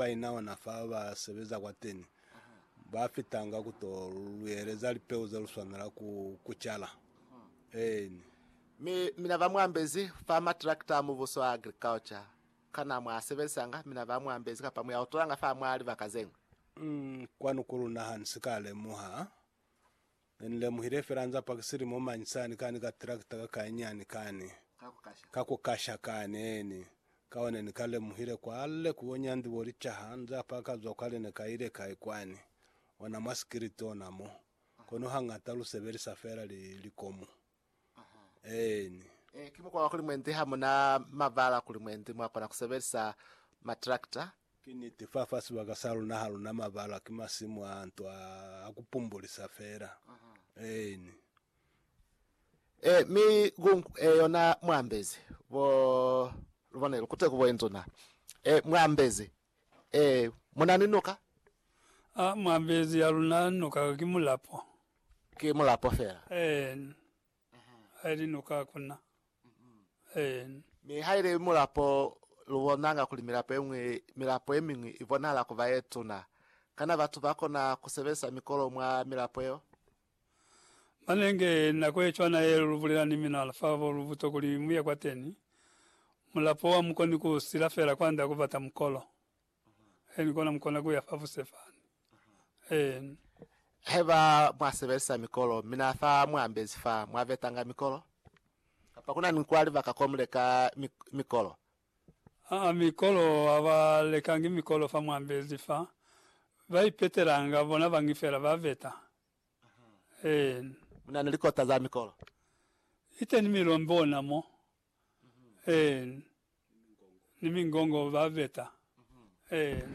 ba ina ona fa ba sebeza kwateni, ba fitanga ku to lu yeleza lipeu ze lu swanela ku ku cala. Eeni. Mi mina ba mu ambezi fa matrakita a Mubuso a agriculture. Kana mwa a sebezisanga? Mina ba mu ambezi kapa mu ya u tolanga fa mwa libaka ze ñwi? Um, kwanu ku luna ha ni si ka lemuha, Ne ni lemuhile fela nza paki silimo mañi sani kani ka tractor ka ka inyani kani ka ku kasha kani eni ka one ni ka lemuhile kwa le ku bonya ndi bo licaha nza pa ka zwa kwa le ne ka ile kai kwani ona mwa sikiliti ona mo kono hangata lu sebelisa fela li likomu Eeni. Ee, ki mukwa wa kuli mwendi ha mu na mabala kuli mwendi mwa kona ku sebelisa matrakta. Ki niti, fa fa sibaka sa luna ha lu na mabala, ki masimu a nto a, a ku pumbulisa fela. Eeni. Ee, mi gung e yona mwa ambezi, bo, lu bone, lu kute ku bo induna. Ee, mwa ambezi, Ee, muna ni noka. A mwa mbezi ya luna noka ki mulapo. Ki mulapo fela. Een. Haili noka hakuna. Een. Mi haili mulapo, lu bonanga kuli milapo ye ñwi, milapo ye miñwi i bonahala kuba ye tuna. Kana batu ba kona ku sebelisa mikolo mwa milapo yeo? Manenge nako ye cwana ye lu bulela ni mina fa bo lu buto kuli mu ye kwateni, mulapo wa mu koni ku sila fela kwanda ku bata mukolo. Eeni, kona mu kona ku ya fa buse fani. Eeni. Haiba mwa sebelisa mikolo, mina fa mu ambezi fa, mwa betanga mikolo? Kapa kuna ni kwa libaka ko mu leka mikolo? Aa mikolo ha ba lekangi mikolo fa mwambezi fa ba ipetelanga bona bangi fela ba veta en. Muna ni likota za mikolo. Iteni milombe ona mo en ni mingongo ba veta en.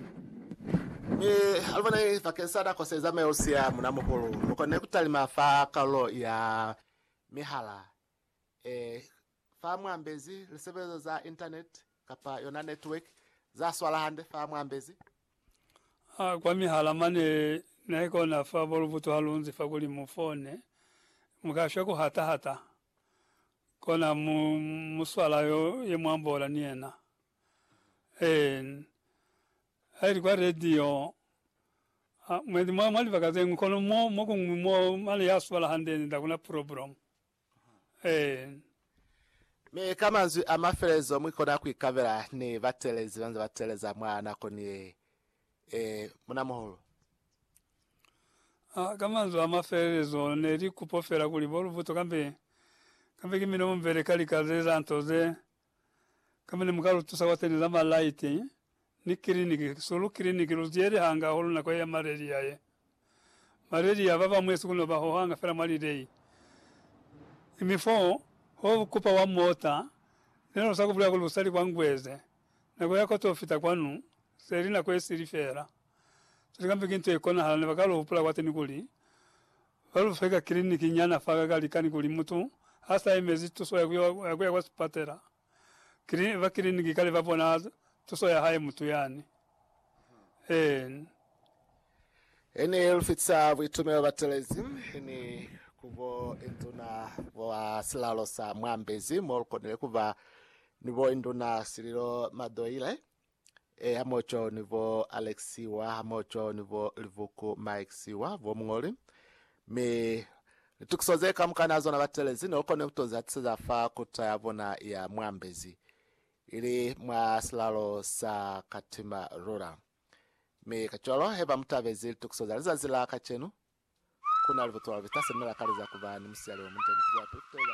Mi alubona i bakeng sa nako se zamaya u siya muna muhulu. Mu konne ku talima fa kalulo ya mihala e Fa mu ambezi lisebelezo za internet kapa yona network za swala hande fa mu ambezi. A kwa mihala mane ne kona fa bo lubutu ha lu nzi fa kuli mu fone, mu ka shwa ku hata hata. Kona mu mu swala yo ye mu ambola ni yena. En, ha ili kwa radio, a mwendi mwa, mwa libaka ze ñwi, kono mo, mo kuñwi mo mane ya swala hande ni nda kuna problem. Ee. Mi ka manzwi a mafelezo mwi kona ku ikabela ni batelezi ba nze ba teleza mwa nako ni ye. Ee, munamuhulu. A, ka manzwi a mafelelezo, ne li kupo fela kuli bo Luvuto kambe, kambe ki milomo mibeli ka lika ze za nto ze Kamene muka lutusa kwa teni lama light ni kiliniki sulu kiliniki lu ziyeli hanga hulu nako ye ya malaria ye malaria baba mwesu kuno ba hohanga fela mwa lilei imi fo ho kupa wa mota nelo sa kubulela kuli usali kwa ngweze nako ya koto fita kwanu seli nako ye sili fela seli kambe ki nto ye konahala ne baka lu hupula kwa teni kuli Ba lu feka kiliniki nyana fa ka likani kuli mutu ha sa yemezi tuso ya ku ya kwa sipatela, ba kiliniki kale ba bona tuso ya hae mutu yani. Ee. He ni lu fitisa buitumelo ba telezi ni ku bo induna ba silalo sa Mwambezi, mo lu konile ku ba ni bo induna Sililo Madoile, E hamoco ni bo Alexiwa hamoco ni bo Livuku Maixiwa, bo muñoli, mi litukiso ze kamukana ha zona batelezi ne ukone kuto zihatiseza fa kuta ya bona ya muambezi, ili mwa silalo sa katima lula. Mi kacwalo heba mutabezi litukiso za lizazi la kacenu, kuna libutuwa lubita semela kaliza kuba ni musiali omunde ni kuzwa pilu kuteleza